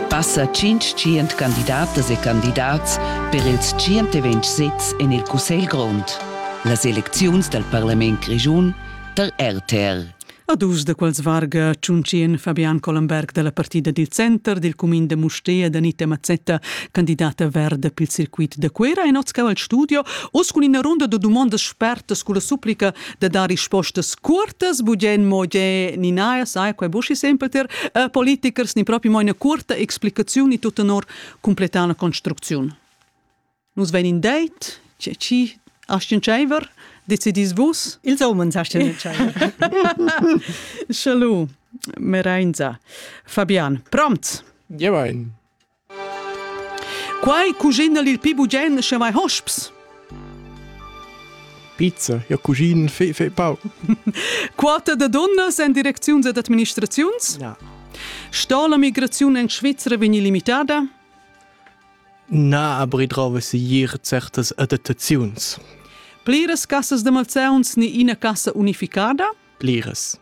Passa tschintschient candidatas e candidats per ils tschient e ventg sezs en il Cussegl grond. Las elecziuns dal parlament grischun tar RTL. A dus da quels varga Tschunchien Fabian Collenberg da la partida dil center dil cumin da Mustér da Anita Mazzetta, candidata verda pil circuit da Cuera, e Notschau al studio, uss cun ina runda da dumondas spertas culla supplica de dar rispostas curtas, bugen mo ge ni na, sai, quei buschi sempel ter uh, politikers ni proprio mo ina curta explicaziun ni tut tenor completar la construcziun. Nus ven in deit, c'è ci Astien Tscheiver, decidis vus? Ils omens Astien Tscheiver. Schalu, Merenza. Fabian, prompt? Jewein. Quai cugina'l il pi bugen sche vai hosps. Pizza, ja cusin, fe, fe pau. Quota de dunnas en direcziuns ed administraziuns? Ja. Sta la migraziun en Svizzera vegni limitada? Na, aber ich traue sicher certas adattaziuns. Pliras cassas de malzeuns ni ina cassa unificada? Pliras.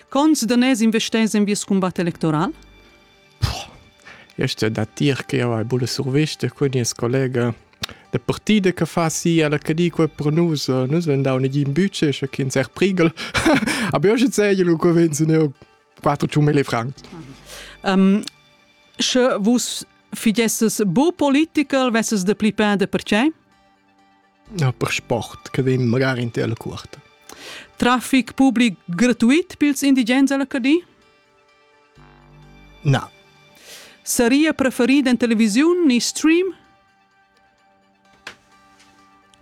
Cons daners investers en vies combat electoral? Este da tir che jau hai buna survista cun nies collega da partida che fa si alla che dico e pro nus nus ven dau negin budget sche kin ser prigel aber io sei lu convinzen eu 4000 francs um, sche vus figesses bo political vesses de pli pende per ce No per sport che vem magari in tele cuort Traffic public gratuit pils indigens alla Cadi? Na. Saria preferida in televisiun ni stream?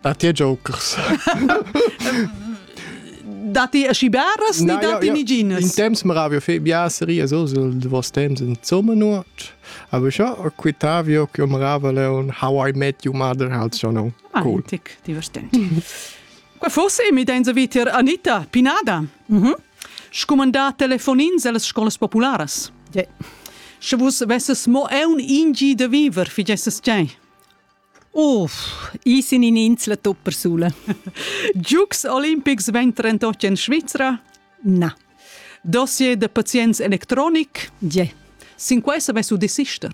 Datti jokers? Datti aschi beras ni datti niginas? In temps maravio fe bia seria so sul vos temps insomma nuot. Aber schon quitavio che marava leon How I Met Your Mother halt schon no. Cool. Tic, divertente. Qua fosse mi dein vitier Anita Pinada. Mhm. Mm Scumandar telefonins ellas scolas popularas? Yeah. Sche vus vesses mo un ingi da viver, figesses tgei? Uff, i sin in insla tuppersula. Giugs olimpics vegn trentotg en Svizra? Na. Dossier de pazients electronic? Yeah. Sin quei savess u desister?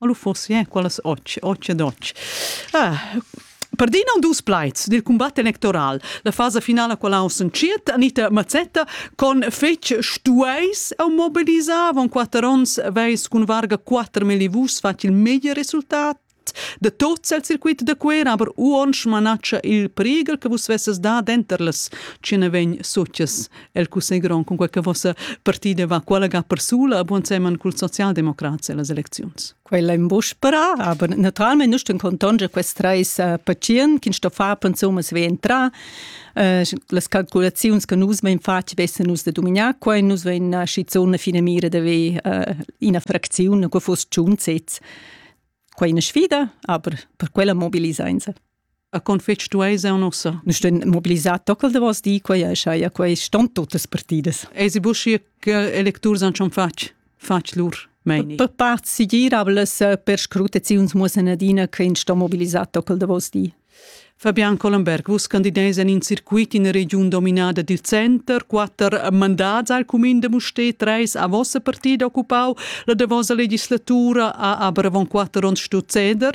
O lu fossi eh, quellas och, och ed och. Ah, per dir non dus plaids dil combat electoral. La fasa finala quella on sunciet Anita Mazzetta con fetg stueis au mobilisar von quatter ons veis cun varga 4 millivus fac il meglier resultat de tots el circuit de Cuera, aber uon schmanaccia il priegel che vus vesses da denter les cine vegn succes el cussegron cun quei che vossa partida va qualaga persula a buon semen cul socialdemocrats e las elecziuns. Quella in buspera, aber naturalmente nus ten contonge quest treis uh, pacient che sto far pensum es ventra. Uh, las calculaziuns che nus vein fatg vessen nus de dominar quei nus vein uh, schizun fine mira de ve uh, ina fraczione che fuss tschunzets. Quei è una sfida, aber per quella mobilisainse. A con fetg stueis eu non sa. Nu ston mobilisar toccel de vos di quei e schai a quei ston totas partidas. Eisi buschi che electurs han schon fatg fatg lur meini. Per part sigirablas per scrutaziuns muossen adina che ins sto mobilisar toccel de vos di. Fabian Collenberg, vus candideis en in circuit in regiun dominada dil center, quatter mandats al cumin de Musté, treis a vossa partida occupau, la de vossa legislatura a aber avon quatter onns sto ceder,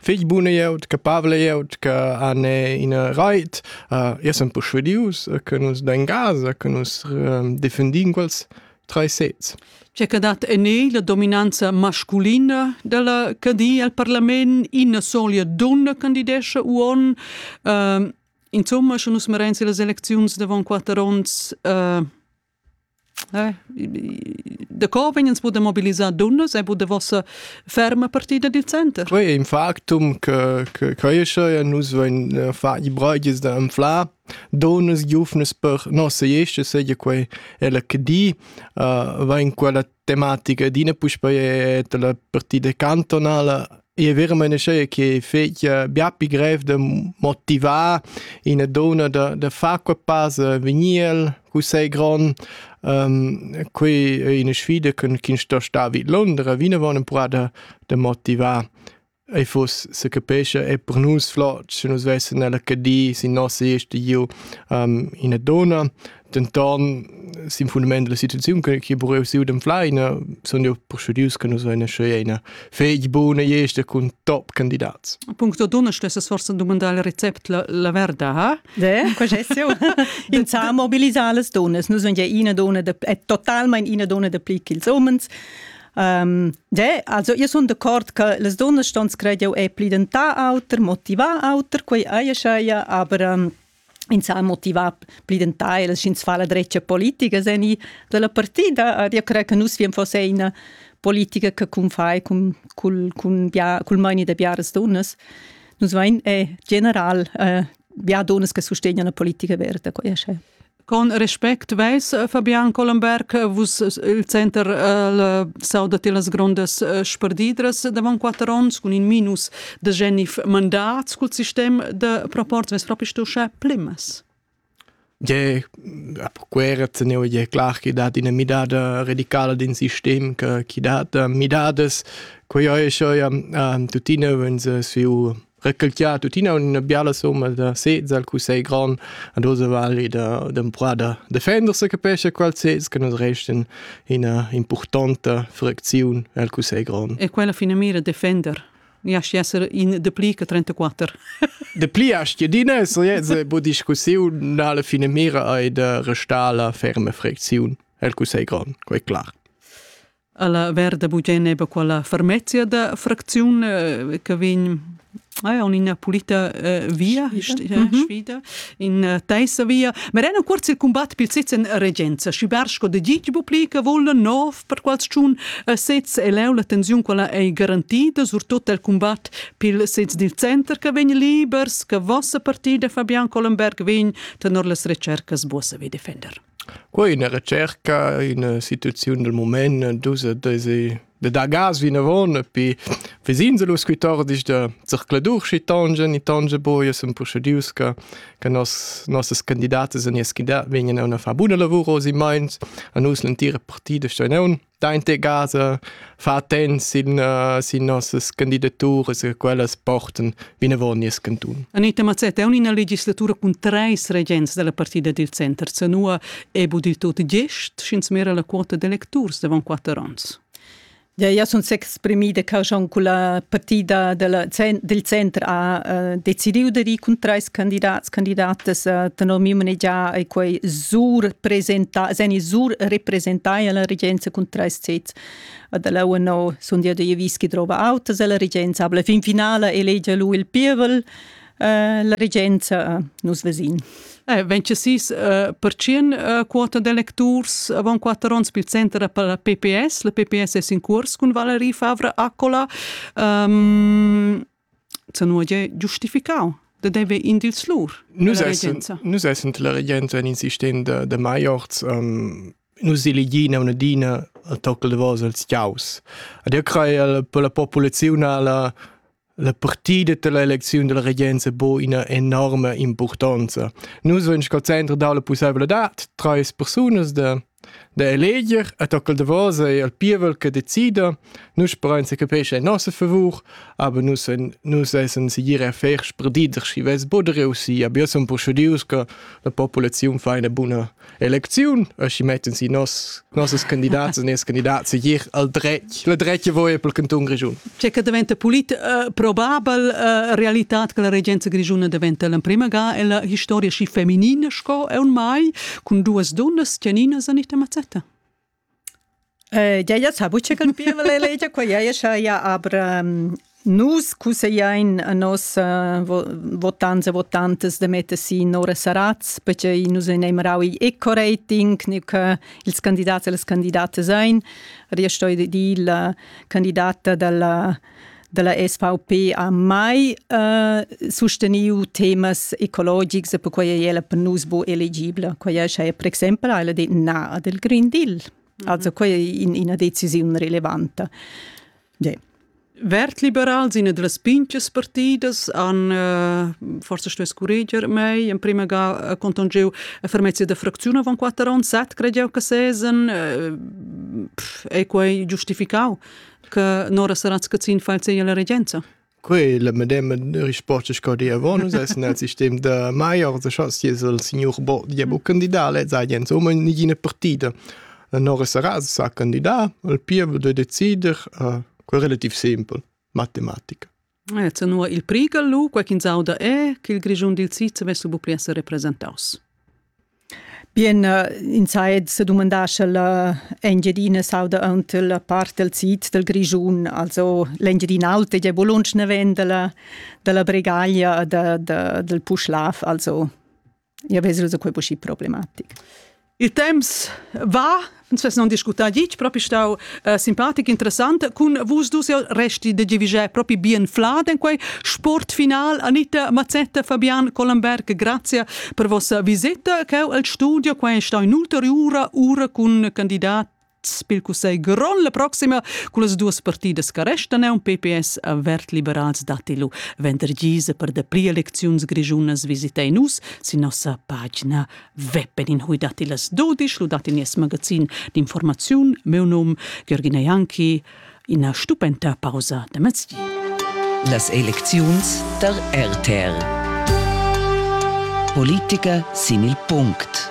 fich buna glieud, capabla glieud che han ina rait. Uh, io sun perschuadius che nus dain gas, che nus um, defendin quels tre sets. C'è che dat en la dominanza masculina della cadi al parlament, ina solia donna candidesce uon. Uh, insomma, sche nus merensi las elecziuns davon quattro onns, uh, Eh, daco vegnens vus da mobilisar dunnas e vus da vossa ferma partida dil center? Quei è in factum che, che cresce e nus voin eh, far i brogis da anflar donas giufnas per nossa esce seja quei ella che di uh, vain quella tematica d'ina puspei della partida cantonala e veramente sei che fece bia più grev de motivar in donna de, de far quel passe veniel cu sei gron um, qui è una sfida che sto sta vid Londra vine vonen pura de, de motivar ei fuss secapescha e per nus flot sche nus vessen nella Cadi sin nossa iste giu um, ina donna denton sin fundament della situaziun che che bureu siu dem fleina sun io persudius che nus vein sche ina fegl buna iste cun top candidats Puncto donna stesses forse domandar il recept la, la verda ha De, questo insà mobilisar las donnas nus sun ja ina donna de, è totalmente ina donna de pli che ils umens Um, de, also io sun d'accord che las dunnas ston scrediu e plidentà auter, motivà auter, quei eia scheia, aber um, ins ha motivà plidentà e ins fa la dretga politica sen i della partida. Io cre che nus viem fosse una politica che cum fai cum, cul, cun bia, cul maini de biaras dunnas. Nus vain è general eh, bia dunnas che sostegnan la politica verda, quei è scheia. Con respect veis Fabian Collenberg vus il center el sauda ti las grondas sperdidras davon quatter onns cun in minus de genif mandat cul sistem de proports veis propi stu sche plimmas? Je quera teneu je clar che dat ina midada radicala din sistem che chi dat midadas quei ei schon ja tuttina wenn se su recalchià tuttina üna biala somma da sez al cussegl grand ad osa vali da d'empruar da defender se capesce qual sez che nos resten ina importanta fracziun al cussegl grand. E quella fina mira defender Ja esser in de pli che 34. De pli as jedina es jeze bu discussiun na la fine mira ai de restala ferme fracziun el cussegl grand, quei clar. Alla verda bugen eba quella fermezia da fracziun eh, che vegn Ah, on ina pulita uh, via, sfida, mm -hmm. sfida in uh, teissa via. Ma era cuorz il combat pil sitz en regenza, schi Bersko de Gig publica vola nov per qualcun uh, sez e leu la tensiun quella ei garantida, surtut el combat pil sez dil center che vegn libers, che vossa partida Fabian Collenberg vegn tenor las recercas bossa vi defender. Quei è üna retscherca, üna situaziun del mumaint, dus e deis da dar gas vinavon e pi ves'ins lu scu tordisch da zercladur schi tongia ni tongia buca. Sun purschedius che che nos nossas candidatas e nies candidat vegnan aunc a far buna lavur oz in meins. A nus l'entira partida stein aunc. dainte casa fa attents sin, uh, sin nossas candidaturas e quellas portan vinavon nies cantun. Anita Mazzetta è una legislatura con treis regents della partida del center Zanua e bu dil tot gest, sch'ins mera la quota d'electurs davant quattro ans. Ja, ja sunt sechs Spremida che schon culla partida della, del center ha uh, decidiu de ricontrar ils candidats candidatas uh, tenor miu manegiar e quei sur presenta, seni sur representai alla regenza contro sez. Dalla UNO sun dia de vis che trova autas alla regenza, aber la fin finale elege lui il pievel la regenza nus vesin. Eh, vencesis eh, percin eh, quota de lecturs avant quatter onns bil center per la PPS. La PPS es in curs cun Valerie Favre Accola. Um, ehm, se nu è giustificau de deve in dils lur. Nus essen, nus essen la regenza in insistent de, de Maiorz um, nus elegina una dina a tocca de vos als chiaus. Ad io crei per la popolazione la La partida dalla elecziun dalla regenza ha buca ina enorma impurtonza. Nus vein sco center dau la pusseivladad, treis persunas da, da eleger et hoc il davos ei il pievel che decida. Nus sperein se capescha in nossa favur, aber nus en, nus essen sicir a fer spredider schi ves bod reusi, aber io sun persudius che la populaziun fa eine buna Elecziun e schi metten si nos nossas candidats e nes candidats gir al dretg la dretg voi per canton grigiun C'è che diventa polit uh, probabel uh, realitat che la regenza grigiuna diventa l'emprima ga e la historia schi feminin sco è un mai cun duas dunnas teninas a nita mazzetta Jaja sa buca ch'el pieva la legia, qua jaja saja, aber nus cussegliein a nossa votants e votantas da metter si Nora Saratz, pertgei nus ein marau igl eco-rating, neu che ils candidats e las candidatas ein. Ed io sto dir la candidata dalla dalla SVP ha mai uh, susteniu temas ecologics e perquei ei ella per nus bu elegibla. Quei ei sche per exempel ha ella detto na del Green Deal. Mhm. Also quei è in, ina decisiun relevante. Yeah. Vertliberals in las pinches partidas han uh, forse stuess curreger mei in prima ga conton giu a fermezia da fracziun avant quatter ans set credeu che sesen uh, ei quei giustificau che Nora Saratz-Cazin fällt sie la Regenza. Quei le medem risposte che di avon es nel sistem de Maier, se chas il signor Bo diabo candidale, sai Jens Omer nigine partita. Nora Saratz sa candidà, il pievo de decider, uh, relativ simpel, matematica. Eh, tenor il prighel lu, quei ch'ins auda è che il Grischun dil sid vess lu pli essere representaus. Bien, uh, in sait se domandar sche la Engiadina sauda ant la part del sid del Grischun, also l'Engiadina Alta è bolunsch ne ven della, della Bregaglia da, da, del Puschlav, also Io vesu da quei posci problematic. Il temps va, uns vess non discutar dic, propi stau uh, simpatic, interessant, cun vus dus resti de giviger propi bien flad en quei sport final. Anita Mazzetta, Fabian Collenberg, grazie per vossa visita, cheu al studio, quei è stau in ulteriura ura cun candidat pil cussegl grond la proxima cun las duas partidas che restan un PPS vert liberals datti lu vendergise per de pli elecziuns grischunas visita in us sin nossa pagina web in hui datti las dudisch lu datti nies magazin d'informaziun meu num Georgina Janki ina stupenta pausa da mezdi las elecziuns der RTR Politiker sin il punct